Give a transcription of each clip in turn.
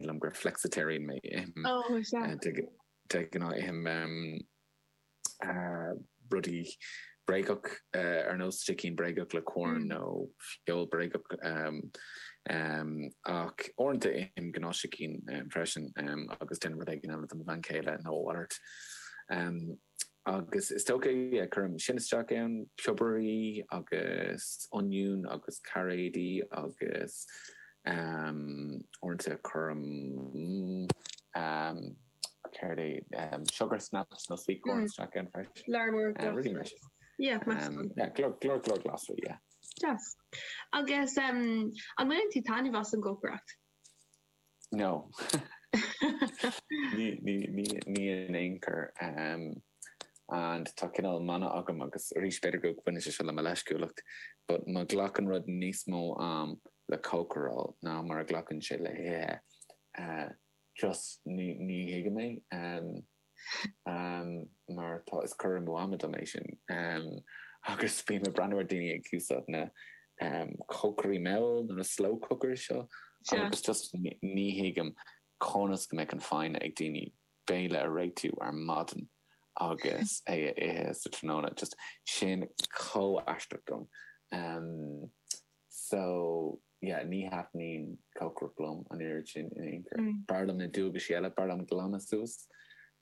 liom gur flexitarian mé. Ithim de ghnáth ithim rudaí bréagach ar nós sicín bréagach le Quorn nó feoil bréagach ach uaireanta ithim gnáthshicín freisin agus déanaim rud éigin eile do mo bhean chéile nó a mhalairt. agus is dócha a cuirim sin isteach ann, piobair agus oinniún agus cairéidí agus uaireanta cuirim céard é sugar snaps nó sweet corn isteach ann freisin. Go leor leor glasraí. Go leor leor glasraí, yeah. Deas. Agus an bhfaigheann tú taitneamh as an gcócaireacht? No. Ní in aon chor. And tá cineál mana agam agus arís b'fhéidir go bhaineann sé seo le mo leisciúlacht, but má ghlacann rud níos mó ama le cócaráil ná mar a ghlacann sé le hithe, just ní thuigim é. mar tá, is cur amú ama dom é sin agus bím ag breathnú ar daoine ag úsáid na cócairí mall nó na slow cooker seo agus just ní thuigim conas go mbeadh an foighne ag daoine béile a réitiú ar maidin agus é a ithe sa tráthnóna just sin chomh aisteach dom so Yeah, ní thaitníonn cócaireacht liom an oiread sin in aon chor. B'fhearr liom na dualgaisí eile, b'fhearr liom glanadh suas,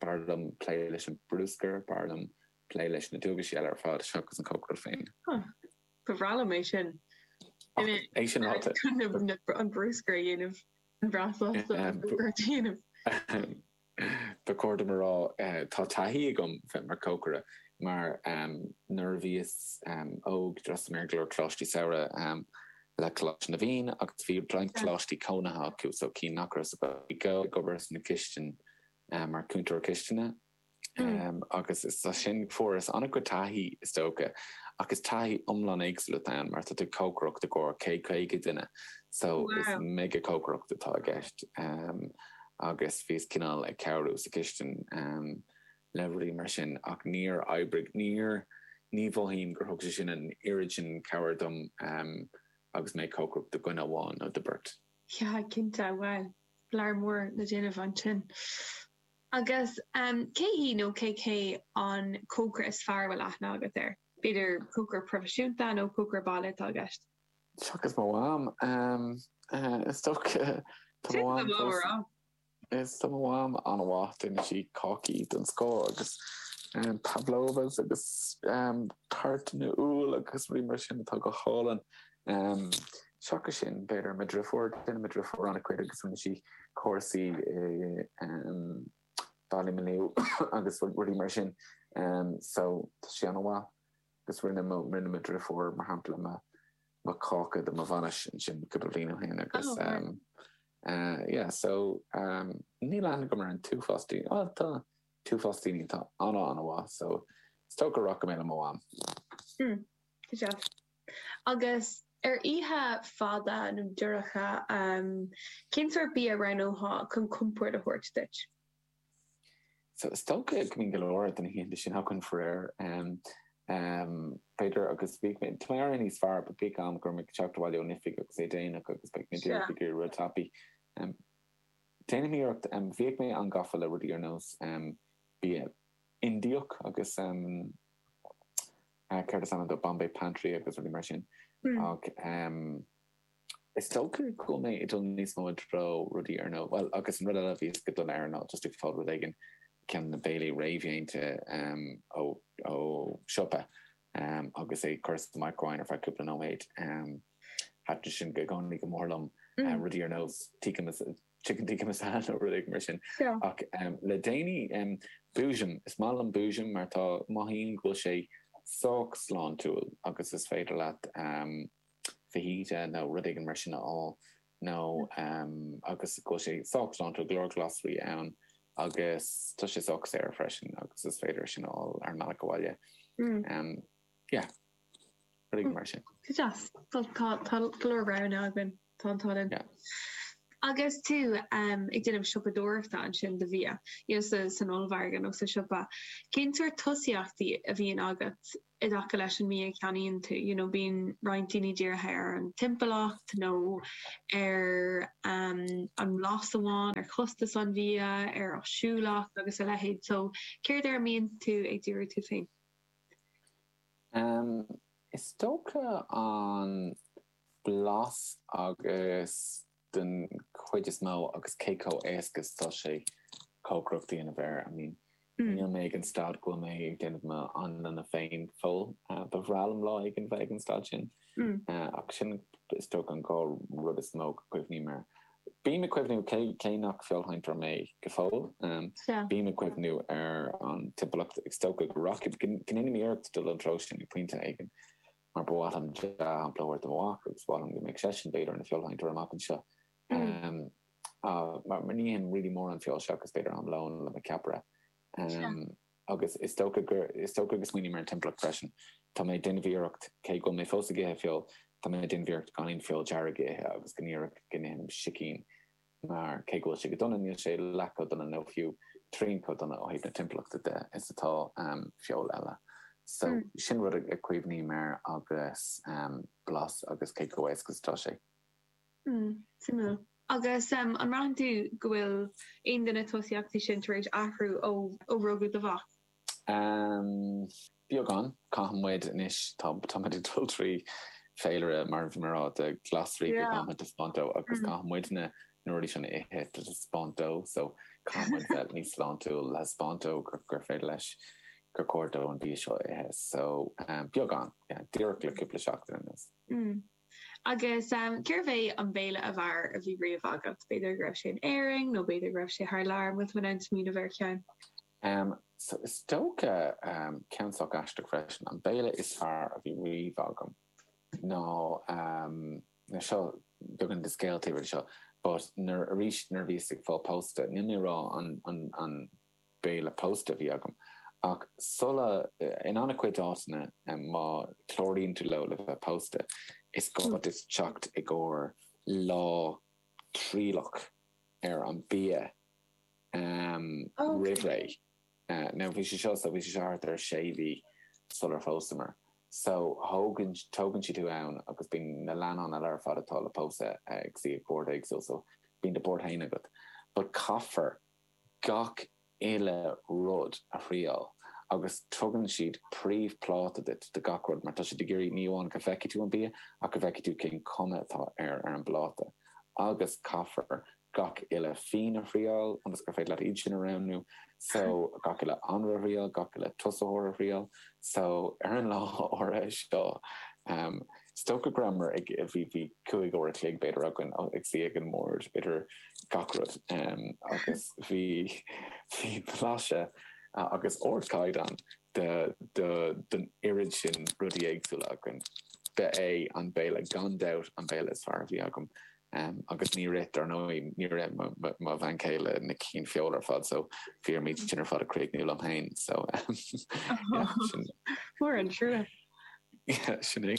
b'fhearr liom plé leis an brúscar, b'fhearr liom plé leis na dualgaisí eile ar fad seachas an cócaireacht féin. Huh, ba bhreá liom é sin. Ach é sin ráite. An brúscar a dhéanamh, an-bhreá sásta an brúscar a dhéanamh. Ba chóir dom a rá, tá taithí agam bheith i mo chócaire mar nuair a bhíos óg d'fhreastail mé ar go leor coláistí samhraidh le Coláiste na bhFiann agus bhí roinnt coláistí cónaithe acu so chinn go rabhas ag obair sna cistineacha mar cúntóir cistine agus as sin fuaireas an-chuid taithí is dócha ach is taithí iomlán éagsúil atá ann mar tá tú ag cócaireacht i gcomhair 100 caoga duine so is mega cócaireacht atá i gceist. agus bhíos cineál ag cabhrú sa chistin le rudaí mar sin ach níor oibrigh, níor, ní mhothaím gur thug sé sin an oiread sin cabhair dom agus mé ag cócaireacht do dhuine amháin nó do beirt. Yeah, cinnte, bhuel, go leor leor le déanamh ansin. Agus cé hí nó cé hé an cócaire is fearr a bhfuil aithne agat air? B'fhéidir cócaire proifisiúnta nó cócaire baile atá i gceist? Seachas mo mham. Is dócha tá mo mham pósta. Is tá mo mham an-mhaith. Déanann sí cácaí don scoil agus pavlovas agus toirtín úll agus rudaí mar sin atá go hálainn. Seachas sin b'fhéidir mo dhriofúr. Déanann mo dhriofúr an-chuid agus rinne sí cúrsaí i Ballymaloe agus rudaí mar sin. So tá sí an-mhaith. 'gus rinne mo rinne mo dhriofúr, mar shampla, mo mo cháca do mo bhainis ansin cúpla bliain ó shin agus Oh, right. eh, yeah, so, um, níl aithne agam ar an t-uafás daoine, bhuel, tá an t-uafás daoine atá ana ana mhaith, so is dócha go rachaidh mé le mo mham. Hmm, tá sé. Agus ar oíche fada nó dorcha, um, cén sórt bia a roghnóthá chun compord a thabhairt duit? Is dócha go mbíonn go leor de na hoícheanta sin agam faraor, b'fhéidir, agus bíodh mé, tá mé ag éirí níos fearr, but bíodh am go raibh mé ag teacht abhaile ón oifig agus é déanach agus beidh mé déarfaí gur rud tapaí. Déanaim iarracht, bhíodh mé an-gafa le rudaí ar nós bia Indiach agus céard is ainm dó, Bombay Pantry agus rudaí mar sin, ach. Is dócha go bhfuil mé ag dul níos mó i dtreo rudaí ar ndóigh, bhuel, agus an rud eile a bhí mé ag dul ag rá ná just ag fáil rud éigin, ceann de na béilí réamhdhéanta ó siopa, agus é a chur sa microwave ar feadh cúpla nóiméad. Thaitin sin i gcónaí go mór liom, rudaí ar nós chicken tikka masala nó rud éigin mar sin. Ach le déanaí, Boojum. Is maith liom Boojum mar tá, mothaím go bhfuil sé sách sláintiúil agus is féidir leat. fajita nó rud éigin mar sin a fháil nó agus go bhfuil sé sách sláintiúil, go leor glasraí ann agus tá sé sách saor freisin agus is féidir é sin a fháil ar an mbealach abhaile. Yeah. Rud éigin mar sin. Tá go leor rogha againn. Tá an t-ádh liom. Agus tú ag déanamh siopadóireachta ansin do bhia, san ollmhargadh nó sa siopa, cén sórt tosaíochtaí a bhíonn agat i dtaca leis an mbia a cheannaíonn tú? You know bíonn roinnt daoine dírithe ar an timpeallacht nó ar an mblas amháin, ar chostas an bhia, ar áisiúlacht agus a leithéid. So céard air a mbíonn tú ag díriú tú féin? Is dócha an blas agus den chuid is mó agus cé chomh éasca is atá sé cócaireacht a dhéanamh air. I mean níl mé ag an staid go bhfuil mé ag déanamh mo anlanna féin fós. Ba bhreá liom lá éigin bheith ag an staid sin ach sin is dócha an dhá rud is mó go gcuimhním air. Bím ag cuimhniú cé cé nach feoilséantóir mé go fóill bím ag cuimhniú ar an timpeallacht is dócha go rachaidh go ndéanaim iarracht dul sa treo sin ag pointe éigin. mar ba mhaith liom dea-shampla a thabhairt do mo mhac agus ba mhaith liom go mbeadh seisean, b'fhéidir, ina feoilshaintóir amach anseo. Mar ní ithim really mórán feoil seachas b'fhéidir am lóin le mo ceapaire. agus is dócha gur is dócha go smaoiním ar an timpeallacht freisin. Tá mé ag déanamh iarracht, cé go bhfuil mé fós ag ithe feoil, tá mé ag déanamh iarracht gan aon feoil dearg a ithe agus go díreach go n-ithim sicín. mar cé go bhfuil sé go dona, níl sé leath chomh dona nó fiú trian chomh dona ó thaobh na timpeallachta de is atá feoil eile. So, sin rud a chuimhním air agus blas agus cé chomh éasca is atá sé. Mm, suimiúil. Agus an mbraitheann tú go bhfuil aon de na tosaíochtaí sin tar éis athrú ó rugadh do mhac? Am beagán, caithfidh muid anois, tá, tá muid ag dul trí féilire, mar a bhí mé ag rá, de ghlasraí go caithfidh muid a thaispeáint dó agus caithfidh muid na, na rudaí sin a ithe le taispeáint dó. So, caithfidh muid bheith níos sláintiúil le taispeáint dó gur, gur féidir leis, gur cóir dó an bia seo a ithe. So, am beagán, yeah, díreach le cúpla seachtain anuas. Agus cérbh é an béile ab fhearr a bhí riamh agat? B'fhéidir go raibh sé in Éirinn nó b'fhéidir go raibh sé thar lear, an bhfuil tú in ann smaoineamh ar cheann. Um, so, is dócha, um, ceann sách aisteach freisin, an béile is fearr a bhí riamh agam ná, um, tá seo, beagán de scéal taobh thiar de seo, but nuair, arís, nuair a bhíos ag fáil pósta, níl mé a rá an, an, an, Béile pósta a bhí agam. Ach sula, in an-chuid áiteanna, má chláraíonn tú leo le bheith pósta, is gá duit teacht i gcomhair lá trialach ar an bia roimh ré. Now, bhí sé seo, so bhí sé seo thart ar sé mhí sular phósamar. So, thóg, tógann siad thú ann agus bíonn na leannáin eile ar fad atá le pósadh ag suí ag bord éagsúil, so bíonn do bhord féin agat. But caithfear gach uile rud a thriáil agus tugann siad príomhphláta duit de gach rud mar tá siad ag iarraidh ní amháin go bhfeicfidh tú an bia ach go bhfeicfidh tú cén cuma atá air ar an bpláta agus caithfear gach uile fíon a thriáil ionas gur féidir leat iad sin a roghnú so gach uile anraith a thriáil, gach uile tosaitheoir a thriáil so ar an lá áirithe seo Is dócha go rabhamar ag, bhí, bhí cúig uair a chloig b'fhéidir againn ag suí ag an mbord idir gach rud agus bhí, bhí blaiseadh agus ardchaighdeán de, de, den oiread sin rudaí éagsúla againn. Ba é an béile gan dabht an béile is fearr a bhí agam. agus níor ith, dar ndóigh, níor ith mo bhean chéile na cinn feola ar fad, so bhíos iad sin ar fad á gcríochnú liom féin, so sin. Mór an trua. Sin é.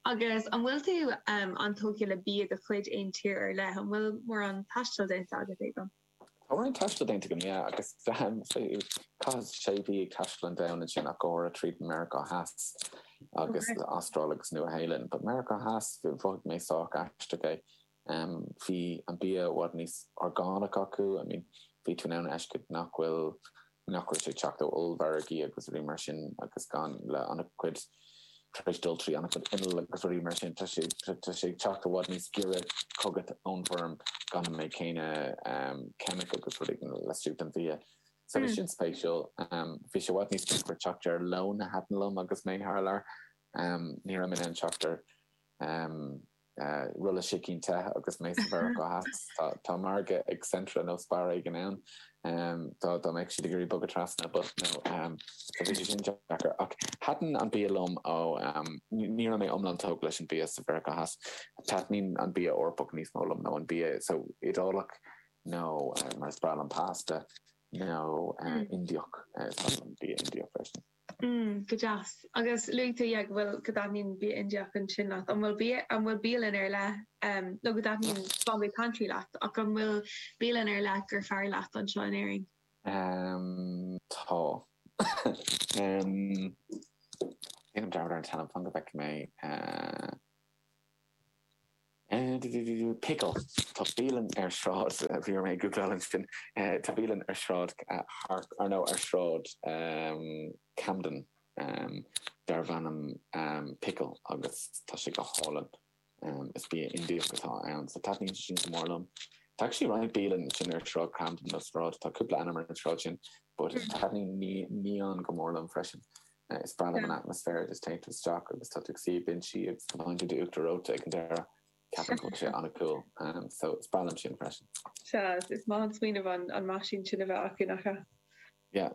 Agus an bhfuil tú an-tógtha le bia de chuid aon tír ar leith? An bhfuil mórán taistil déanta agat, Aodán? Tá roinnt taistil déanta agam, yeah, agus chaith mé sé mhí ag taisteal an domhain ansin, ach go háirithe tríd Meiriceá Theas agus Astráil agus Nua-Shéalainn. But Meiriceá Theas, mhothaigh mé sách aisteach é. Bhí an bia i bhfad níos orgánach acu, I mean, bhí tú in ann a fheiscint nach bhfuil, nach bhfuil sé ag teacht ó ollmhargaí agus rudaí mar sin agus gan leis an-chuid, tar éis dul trí an-chuid inneall agus rudaí mar sin, tá sé, tá sé ag teacht i bhfad níos giorra chugat ón bhfeirm gan an méid céanna ceimicí agus rudaí le sú den bhia. So bhí sin spéisiúil. Bhí sé i bhfad níos deacra teacht ar lón a thaitin liom agus mé thar lear. Ní raibh mé in ann teacht ar. rolla sicín te agus mé i Meiriceá Theas. Tá margadh ag Centra nó Spar éigin ann. Dá mbeadh siad ag iarraidh bogadh trasna but nó tá sé sin deacair. Ach thaitin an bia liom ó, ní raibh mé iomlán tógtha leis an bia i Meiriceá Theas. Taitníonn an bia Eorpach níos mó liom nó an bia so Iodálach nó mar is breá liom pasta nó Indiach. Tá an bia Indiach freisin. mm go deas agus luaigh tú yeah go bhfuil go dtaitníonn bia Indiach ansin leat an bhfuil bia an bhfuil bialann ar leith um nó go dtaitníonn Bombay Pantry leat ach an bhfuil bialann ar leith gur fearr leat anseo in Éirinn um tá um tá an t-ainm fan go bhfeice mé uh, Pickle, Tá bialann ar shráid, bhí orm é a ghúgláil ansin, tá bialann ar shráid Harp, or no, ar shráid Camden darbh ainm Pickle agus tá sé go hálainn, is bia Indiach atá ann, so taitníonn sé sin go mór liom. Tá actually roinnt bialann ansin ar shráid Camden, nó sráid, tá cúpla ainm ar an sráid sin, but taitníonn Neon go mór liom freisin. Is breá liom an atmaisféar agus téann tú isteach agus tá tú ag suí ar binsí agus tá an t-inneall uachtar reoite ag an deireadh. Ceapaim go bhfuil sé an-cool so is breá liom sin freisin. Sea, is maith an smaoineamh an meaisín sin a bheith acu, nach ea? Yeah.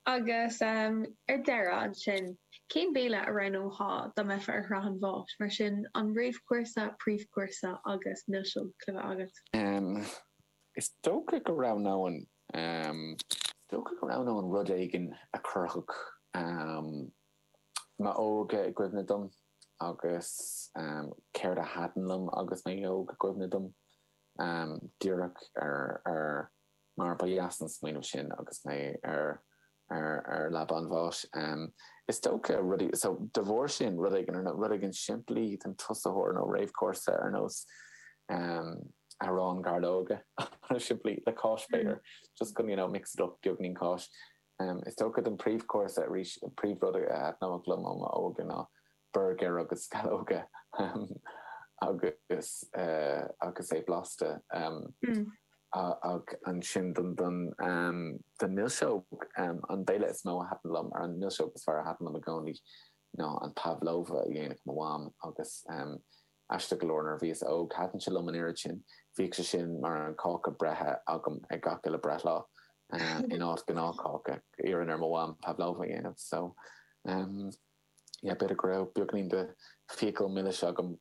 Agus ar deireadh ansin, cén béile a roghnófá dá mbeifeá ar shraith an bháis? Mar sin, an réamhchúrsa, príomhchúrsa agus milseog le bheith agat? Is dócha go roghnóinn Is dócha go roghnóinn rud éigin a chuirfeadh m'óige i gcuimhne dom agus céard a thaitin liom agus mé óg i gcuimhne dom, díreach mar ba dheas an smaoineamh sin agus mé ar ar leaba an bháis. Is dócha rudaí, so, de bharr sin, rud éigin, nó rud éigin simplí don tosaitheoir nó réamhchúrsa ar nós arán gairleoige, rud simplí, le cáis b'fhéidir, just go, you know, mix it up, beagainín cáis. Is dócha don príomhchúrsa arís, an príomhrud a thaitin liom ó m'óige ná. burgair agus scallóga agus agus é blasta ach ansin don don don milseog an béile is mó a thaitin liom nó an milseog is fearr a thaitin liom i gcónaí ná an pavlova a dhéanadh mo mham agus aisteach go leor nuair a bhíos óg thaitin sé liom an oiread sin bhíodh sé sin mar an cáca breithe agam ag gach uile breithlá in áit gnáthcháca iarrainn ar mo mham pavlova a dhéanamh so yeah b'fhéidir go raibh beagainín de fiacail milis agam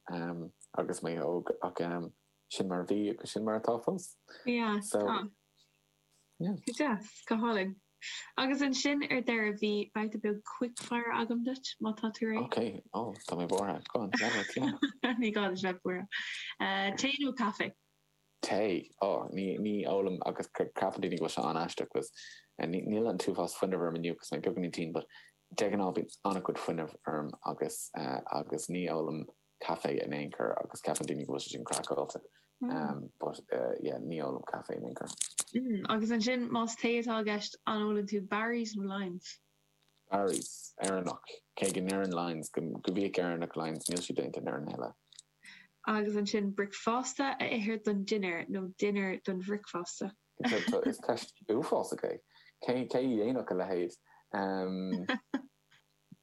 agus mé óg ach sin mar a bhí agus sin mar atá fós. Yeah, so yeah. Go deas, go hálainn. Agus ansin ar deireadh bhí babhta beag quickfire agam duit, má tá tú réidh. Ok, oh, tá mé buartha. Go on, lean leat, yeah. Ní gá duit a bheith buartha. Tae nó caife? Tae. Ó, ní, ní ólaim agus ceapann daoine go bhfuil sé an-aisteach 'cause níl an t-uafás fuinnimh orm inniu 'cause tá mé beagáinín tinn but de ghnáth bíonn an-chuid fuinnimh orm agus, agus ní ólaim caife in aon chor agus ceapann daoine go bhfuil sé sin craiceáilte but yeah ní ólaim caife in aon chor. Mm, agus ansin más tae atá i gceist an ólann tú Barry's nó Lyons? Barry's, Éireannach, cé go ndeireann Lyons go mbíodh Éireannach Lyons, níl sé déanta in Éirinn a thuilleadh. agus ansin bricfeasta a ithe don dinnéar nó dinnéar don bhricfeasta. Is ceist uafásach é. Cé a dhéanfadh a leithéid?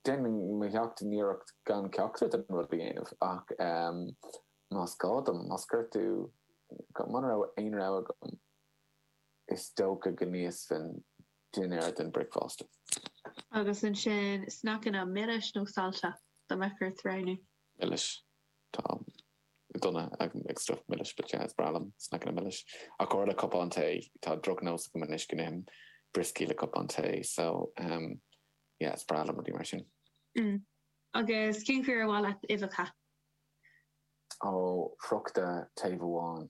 Déanaim mo sheacht n-iarracht gan ceachtar den rud a dhéanamh ach más gá dom, más gá, ar dtús, mura raibh aon rogha agam, is dócha go n-íosfainn dinnéar don bricfeasta. Agus ansin sneaiceanna milis nó saillte, dá mbeadh ort roghnú? Milis. Tá mé dona ag stuif milis, but yeah, is breá liom sneaiceanna milis. Ach go háirithe le cupán tae, tá drochnós agam anois go n-ithim brioscaí le cupán tae, so um yeah, is breá liom rudaí mar sin. Mm. Agus cén chaoi ar mhaith leat uibheacha? Ó, friochta taobh amháin.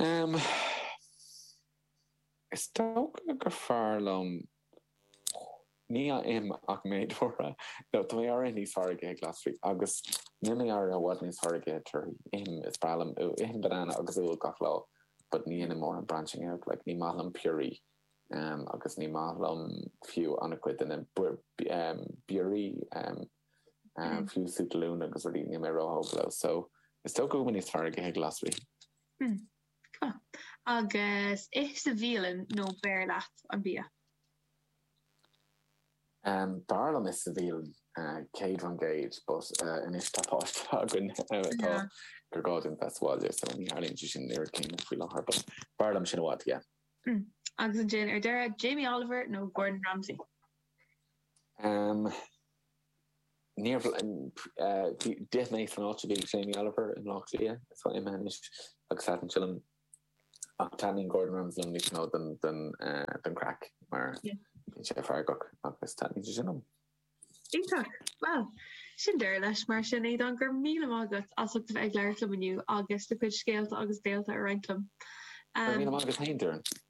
Ehm. Is dócha gur fearr liom ní ithim an méid torthaí, nó táim ag éirí níos fearr ag ithe glasraí agus nílim ag éirí i bhfad níos fearr ag ithe torthaí. Ithim is breá liom úll. Ithim banana agus úll gach lá but ní dhéanaim mórán branching out. Like ní maith liom piorraí ehm agus ní maith liom fiú an-chuid de na berries ehm. fiú sú talún agus rudaí níl mé ró-thógtha leo so is dócha go bhfuilim níos fearr ag ithe glasraí. Tá. Agus ithe sa bhialann nó b'fhearr leat an bia? B'fhearr liom ithe sa bhialann, céad fan gcéad, but anois tá páiste againn is dócha gur gá dúinn bheith sa bhaile so ní tharlaíonn sé sin an oiread céanna faoi láthair but b'fhearr liom sin i bhfad, yeah. Agus ansin ar deireadh, Jamie Oliver nó Gordon Ramsay? M, Níorbh fh, d'ith mé san áit a bhí Jamie Oliver i mBlá Cliath, tá sé imithe anois agus thaitin sé liom. Ach taitníonn Gordon Ramsay liom níos mó don, don, eh, don craic mar bíonn sé feargach agus taitníonn sé sin liom. Iontach! Bhuel, sin deireadh leis mar sin. Aodhán, go raibh míle maith agat as ucht a bheith ag labhairt liom inniu agus do chuid scéalta agus béilte a roinnt liom. Go raibh míle maith agat féin, Doireann.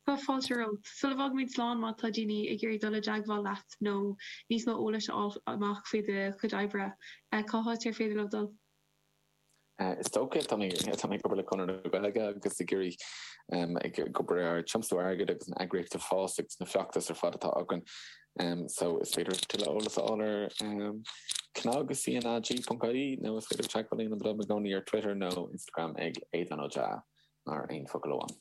Tá fáilte romhat. Sula bhfágaimid slán má tá daoine ag iarraidh dul i dteagmháil leat nó níos mó eolais a fháil amach faoi do chuid oibre, cá háit ar féidir leo dul? Is dócha tá mé tá mé ag obair le Conradh na Gaeilge agus ag iarraidh ag ag obair ar thiomsú airgid agus na heagraíochta a fás agus na feachtais ar fad atá againn so is féidir tuilleadh eolas a fháil ar cnag cnag.ie nó is féidir teagmháil a dhéanamh liom i gcónaí ar Twitter nó Instagram ag Aodhán Ó Deá mar aon focal amháin.